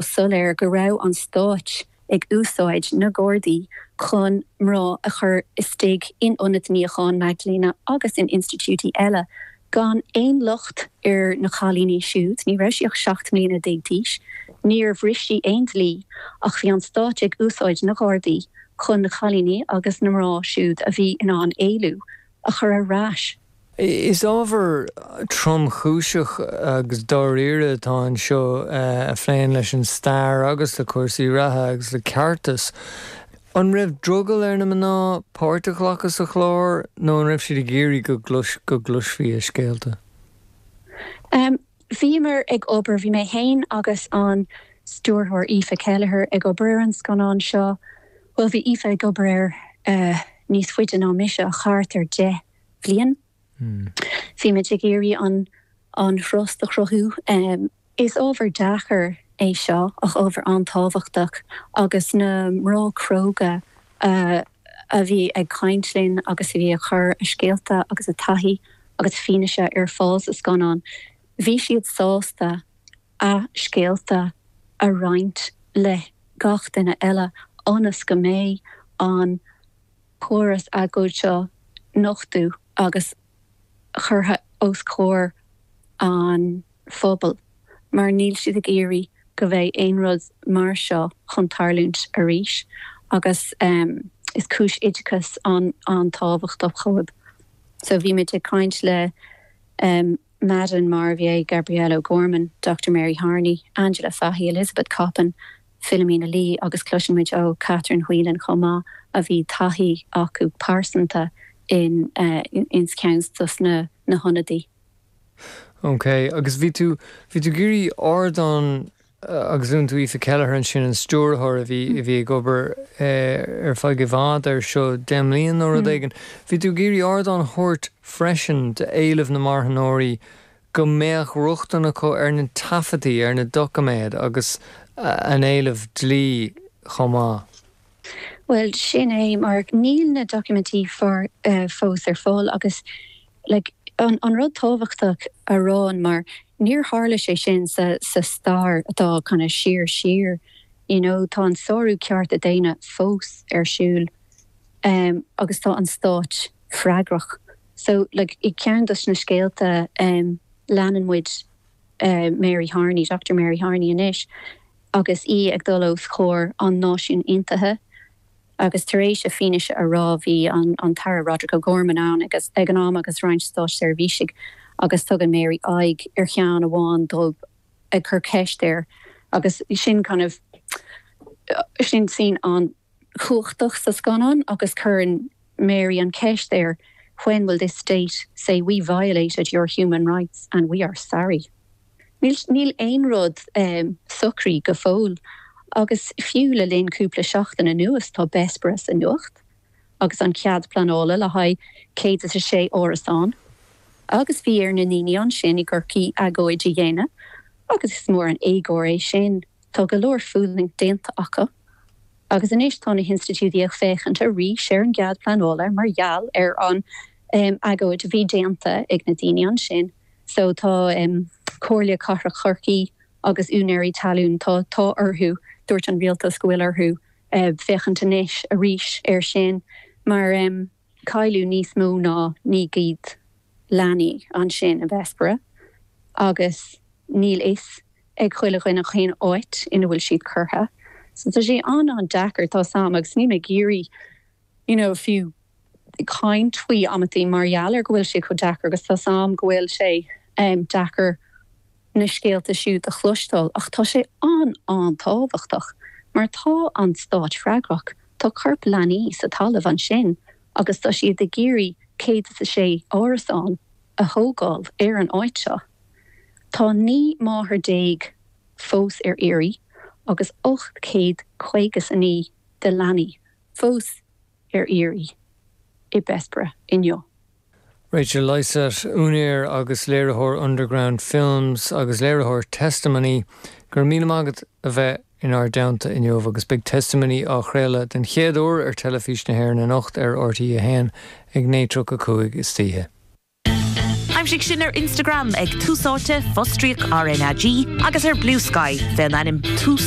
soiléir go raibh an Stát ag úsáid na Gardaí chun mná a chur istigh in ionaid níocháin Magdalene, agus in institiúidí eile gan aon locht ar na cailíní siúd, ní raibh sí ach 17 mbliana d'aois, níor bhris sí aon dlí, ach bhí an Stát ag úsáid na Gardaí chun na cailíní agus na mná siúd a bhí in ann éalú, a chur ar ais. Is ábhar tromchúiseach agus dáiríre atá anseo a phléann leis an stair agus le cúrsaí reatha agus le ceartas. An raibh drogall ar na mná páirt a ghlacadh sa chlár nó an raibh siad ag iarraidh go gcloisfí a scéalta? Bhíomar ag obair, bhí mé féin agus an stiúrthóir Aoife Kelleher ag obair ar an scannán seo, bhuel bhí Aoife ag obair air níos faide ná mise ach thart ar deich mbliana. Bhí muid ag iarraidh an trust a chruthú. Is ábhar deacair é seo ach ábhar an-tábhachtach agus na mná cróga a bhí ag caint linn agus a bhí a chur a scéalta agus a taithí agus fianaise ar fáil sa scannán, bhí siad sásta a scéalta a roinnt le gach duine eile ionas go mbeidh an. córas éagóir seo nochtaithe agus curtha os comhair an phobail mar níl siad ag iarraidh go mbeidh aon rud mar seo chun tarlúint arís agus is cúis oideachais an-tábhachtach dóibh. So bhí muid ag caint le Madeleine Marvier, Gabrielle O'Gorman, Doctor Mary Harney, Angela Fahey, Elizabeth Coppin, Philomena Lee agus cloiseann muid ó Catherine Whelan chomh maith a bhí taithí acu pearsanta in ins ceann dos na hionadaí. OK, agus bhí tú, bhí tú ag iarraidh ardán agus luann tú Aoife Kelleher ansin an stiúrthóir a bhí, a bhí ag obair ar feadh i bhfad air seo, deich mbliana nó rud éigin, bhí tú ag iarraidh ardán a thabhairt freisin d'éilimh na marthanóirí go mbeadh rochtain acu ar na taifeadaí, ar na doiciméid agus an éileamh dlí chomh maith? Bhuel, sin é, mar níl na doiciméidí fós fós ar fáil agus, like, an rud tábhachtach a rá, mar níor tharla sé sin sa stair atá kind of siar siar, you know, tá an sárú cearta daonna fós ar siúl agus tá an stát freagrach. So, like, i gceann de na scéalta, em, leanann muid, eh, Mary Harney, Doctor Mary Harney anois, agus í ag dul os comhair an Náisiún Aontaithe, agus tar éis a fianaise a rá, bhí an, an tAire Roderic O'Gorman ann ag, ag an am agus roinnt státseirbhísigh, agus tugann Mary aghaidh ar cheann amháin dóibh ag cur ceist air, agus sin kind of, sin scene an, chumhachtach sa scannán agus cuireann Mary an cheist air, 'When will this state say we violated your human rights and we are sorry? Níl, níl aon rud socraithe go fóill agus fiú le linn cúpla seachtain anuas tá Bessborough sa nuacht agus an cead pleanála le haghaidh 106 árasán agus bhí ar na ndaoine ansin i gCorcaigh agóid a dhéanamh agus is mór an éagóir é sin. Tá go leor fulaingt déanta acu agus anois tá na hinstitiúidí ag féachaint arís ar an gcead pleanála mar gheall ar an agóid a bhí déanta ag na daoine ansin. So tá Comhairle Cathrach Chorcaí agus úinéirí talún, tá tá orthu, dúirt an rialtas go bhfuil orthu féachaint anois arís air sin mar cailleadh níos mó ná 900 leanaí ansin i Bessborough agus níl a fhios ag chuile dhuine cén áit ina bhfuil siad curtha. So tá sé an-an-deacair, tá 's a'm, agus níl mé ag iarraidh you know fiú caint faoi amantaí mar gheall ar go bhfuil sé chomh deacair agus tá 's a'm go bhfuil sé em deacair na scéalta siúd a chloisteáil ach tá sé an-an-tábhachtach mar tá an Stát freagrach, tá coirp leanaí sa talamh ansin agus tá siad ag iarraidh céad is a sé árasán a thógáil ar an áit seo. Tá naoi máthair déag fós ar iarraidh agus 859 de leanaí fós ar iarraidh i Bessborough inniu. Rachel Lysaght, úinéir agus léiritheoir Underground Films agus léiritheoir Testimony, Go raibh míle maith agat a bheith inár dteannta inniu agus beidh Testimony á chraoladh den chéad uair ar Teilifís na hÉireann anocht ar RTÉ1 ag 9:35 istoíche. Aimsigh sinn ar Instagram ag TúsÁite, Fostríoc RnaG, agus ar Bluesky, faoin ainm Tús